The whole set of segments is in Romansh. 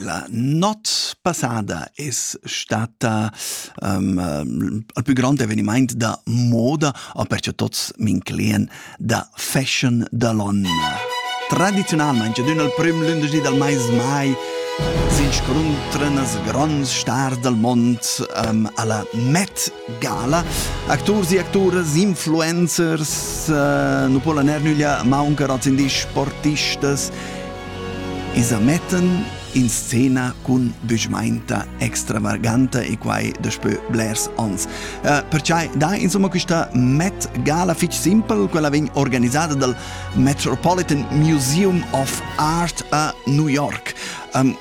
La not passada es stata um, il plü grand evenimaint da moda o perche tots m'inclien da fashion da l'on. Tradiziunalmaing ad ün al prüm lündeschdi dal mais mai s'inscuntran as gronds stars dal mond um, alla Met Gala. Acturs e acturas, influencers, uh, nu po la ner nüglia mauncar als indis sportistas, isa metten in scena cun büschmainta extravaganta e quai daspö blers ons. Uh, perciai da insomma quista Met Gala fich simpel, quella vegn organisada dal Metropolitan Museum of Art a New York. Um,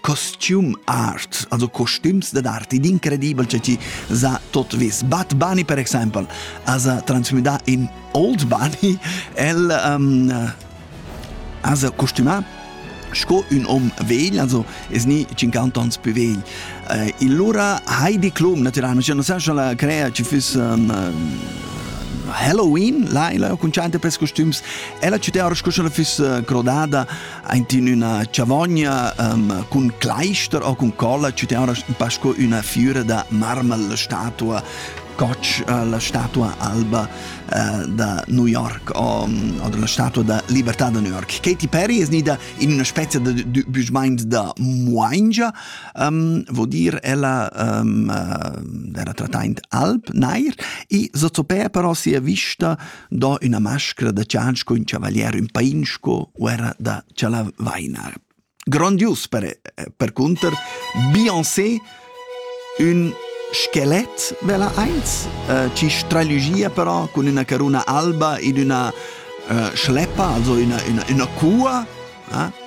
costume arts, also costumes dad arti, d'incredibel, cioè ci sa tot vis. Bad Bunny, per esempio, ha trasmessa in Old Bunny, el um, ha costumato sco un om vegl, also es ni 50 ans più vegl. Eh, il lura Heidi Klum, naturalmente, cioè, non so se la crea ci fosse um, Halloween, là, là, con certe per costums, ella ci te ora scusa la fosse crodada Aint in üna chavogna um, cun cleister o cun colla ci teona un pa sco üna fiüra da marmel statua gotch uh, la statua alba uh, da New York o, o la statua da libertà da New York. Katy Perry es nida in una spezia da büschmaint da Moingia, um, vo dir ella um, uh, era trattaint alb nair e sozopea però sia vista do üna mascra da cianc cun chavalier ün pain sco u era da chalavainar. Grondius per, percunter Beyoncé ün skelet vela eins, äh, ci stralugia però con üna caruna alba in üna äh, schleppa, also üna, üna, üna cua, eh?